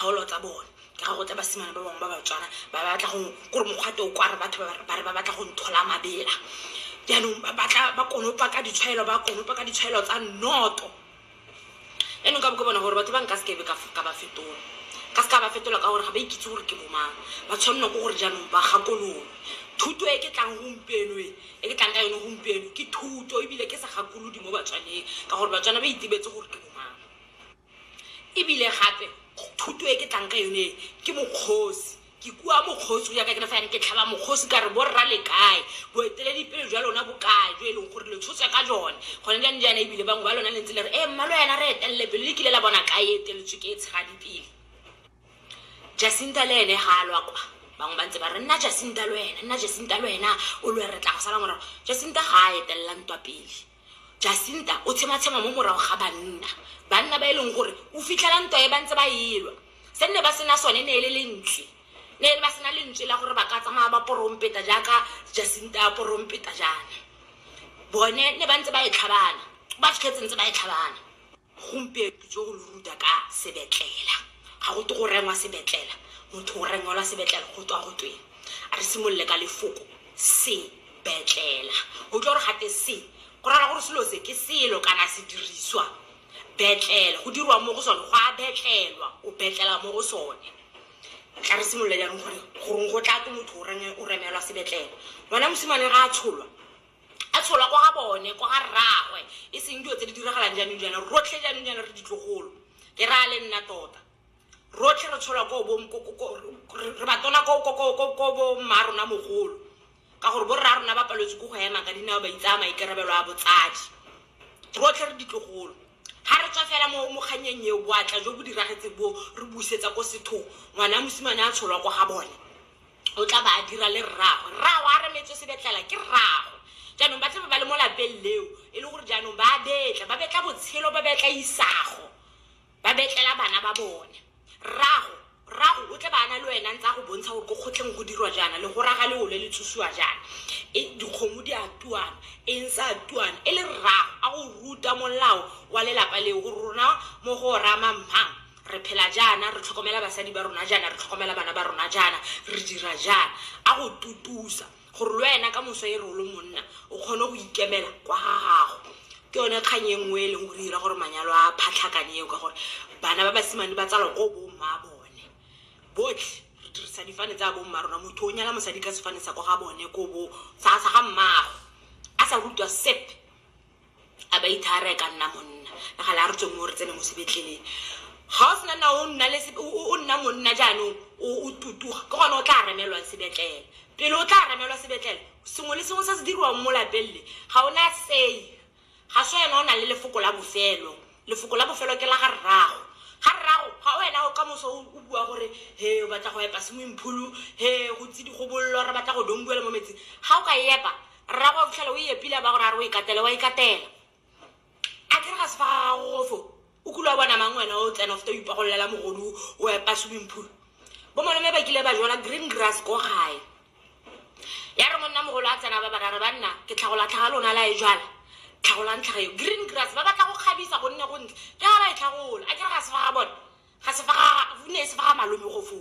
dikgaolo tsa bone ke ga go tla basimane ba bangwe ba batswana ba ba batla go kore mokgwa teo kwa re batho ba ba- ba re ba batla go nthola mabela jaanong ba batla ba konopa ka ditshwaelo ba konopa ka ditshwaelo tsa nnoto jaanong ka bo ke bona gore batho ba nka sekebe ka ka ba fetola ka seka ba fetola ka gore ga ba ikitse gore ke bomang ba tshwanelwa ke gore jaanong ba gakololwe thuto e ke tlang gompieno e e ke tlang ka yone gompieno ke thuto ebile ke sa gakolodi mo batswaneng ka gore batswana ba itebetse gore ke bomang E bile gape, thuto e ke tlang ka yone e, ke mokgosi. Ke kua mokgosi go ya ka kerefa ya me, ke tlhaba mokgosi ka re, Borra le kae? Boeteledipele jwa lona bo kae, jo e leng gore lo tshotswe ka jone gone jang jaana? E bile bangwe ba lona le ntse le re, Ee, mmalwayana, re etelele pele. Le kile la bona kae e eteletswe ke e tshegadipele? Jacinta le ene ga a lwa kwa. Bangwe ba ntse ba re, Nna Jacinta le wena, nna Jacinta le wena, o lwe, re tla go sala morago. Jacinta ga a etelela ntwa pele. Jacinta o tshematshema mo morago ga banna, banna ba e leng gore o fitlhela ntwa e ba ntse ba elwa. Se nne ba sena sone ne e le lentswe, ne e le ba sena lentswe la gore ba ka tsamaya ba porompeta jaaka Jacinta a porompeta jaana. Bone ne ba ntse ba e tlhabana, ba fitlhetse ntse ba e tlhabana. Gompieno jo lo ruta ka sebetlela. Ga go twe go rengwa sebetlela, motho o rengwelwa sebetlela go tswa go tweng. A re simolole ka lefoko sebetlela. O utlwa gore gate se, go raya gore selo se ke selo kana sediriswa. Betlela, go dirwa mo go sone, go a betlelwa, o betlela mo go sone. Tla re simolole jaanong gore goreng go tla twe motho o remelwa sebetlela. Ngwana mosimane ga a tsholwa, A tsholwa kwa ga bone, kwa ga rraagwe, e seng dilo tse di diragalang jaanong jaana. Rotlhe jaanong jaana re ditlogolo, ke raya le nna tota. Rotlhe re tsholwa ko bo, re ba tona ko bo mma rona mogolo, ka gore bo rra rona ba paletswe ke go ema ka dinao ba itsaya maikarabelo a botsadi. Rotlhe re ditlogolo, ga re tswa fela mo kgannyeng eo, boatla jo bo diragetseng boo re busetsa ko sethong, ngwana mosimane a tsholwa kwa ga bone. o tla ba a dira le rraagwe rraagwe a remetswe sebetlela ke rraagwe jaanong ba tlabe ba le mo lapeng leo e le gore jaanong ba betla ba betla botshelo ba betla isago ba betlela bana ba bone rrago rrago o tle ba ana le wena ntse a go bontsha gore ko kgotlheng go dirwa jaana le go raga le ole le tsusiwa jaana e dikgomo di a tuana e ntse a tuana e le rrago a go ruta molao wa lelapa leo gore rona mo go rama mmang re phela jaana, re tlhokomela basadi ba rona jaana, re tlhokomela bana ba rona jaana, re dira jaana. A go tutusa gore le wena ka moso e re o le monna o kgone go ikemela kwa ga gago. Ke yone kgang e nngwe e leng gore e dira gore manyalo a phatlhakane eo ka gore bana ba basimane ba tsalwa ko bo mma bone. Botlhe re dirisa difane tsa bo mma rona, motho o nyala mosadi ka sefane sa kwa ga bone ko bo sa ga mmaagwe, a sa rutwa sepe. a ba ithara e ka nna monna nagala a re tswe mo re tsene mo sebetleleng ga o sena nna o nna le se- o- o- o nna monna jaanong o o tutuga ke gone o tla remelwang sebetlele pele o tla remelwa sebetlele sengwe le sengwe se se diriwang mo lapeng le ga o na sei ga se wena o nang le lefoko la bofelo lefoko la bofelo ke la ga rrago ga rrago ga wena o ka moso o o bua gore he o batla go epa swimming pool he go tse di gobollo re batla go donguela mo metsing ga o ka epa rrago wa fitlhela o e epile a ba gore a re o e katele wa e katela a kere ga se fa ga gago gofo o kule wa bona mang wena o tsena o feta o ipagololela mogodu o epa swimming pool bo malome ba kile ba jala green grass ko gae ya re monna mogolo a tsena ba barare ba nna ke tlhagola tlhaga lona la e jala tlhagolang tlhaga eo green grass ba batla go kgabisa gonne go ntle ke ga ba e tlhagola a kere ga se fa ga bone ga se fa ga ne e se fa ga malome gofo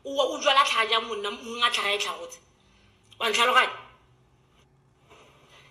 o o jala tlhaga jang monna mongwe a tlhaga e tlhagotse wa ntlhaloganya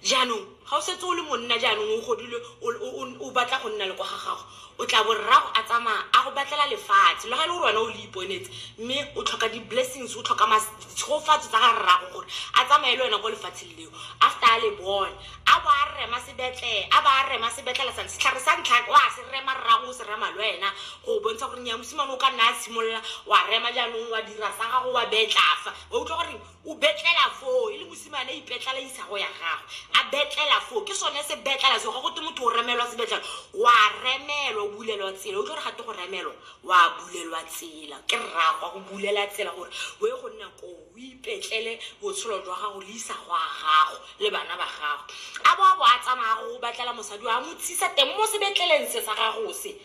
jaanong ga o setse o le monna jaanong o godile o- o- o- o batla go nna le kwa ga gago o tla bo rrago a tsamaya a go batlela lefatshe le ga e le gore wena o le iponetse mme o tlhoka di-blessings o tlhoka mas- ditshogofatso tsa ga rrago gore a tsamaye le wena kwa lefatsheng leo after a le bone a bo a rema sebetlele a ba a rema sebetlele sa setlhare sa ntlha wa se rema rrago o se rema le wena go bontsha gore nya mosimane o ka nna a simolola wa rema jaanong wa dira sa gago wa betlafa wa utlwa gore o betlela foo e le mosimane a ipetlela isago ya gagwe a betlela foo ke sone se betlela seo ga go te motho o remelwa sebetlela wa remelwa o bulelwa tsela utlwa gore ga te go remelwa wa bulelwa tsela ke rragwa go bulela tsela gore o ye go nna koo o ipetlele botshelo jwa gago le isago a gago le bana ba gago a bo a bo a tsamaya go batlela mosadi wa mo tsisa teng mo sebetleleng se sa gago se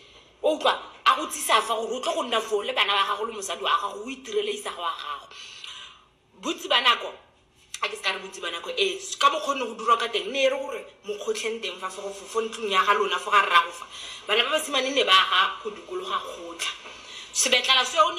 O utlwa? A go tsisa fa gore o tle go nna foo le bana ba gago le mosadi wa gago, o itirele Isaga wa gago. Bontsi ba nako, a ke se ka re bontsi ba nako, ee, ka mokgwa o ne go dirwa ka teng, ne e re gore mo kgotlheng teng fa, fo go- fo- fo ntlong ya ga lona, fo ga rrago fa, bana ba basimane ne ba aga go dikologa kgotlha. Sebetlala seo ne.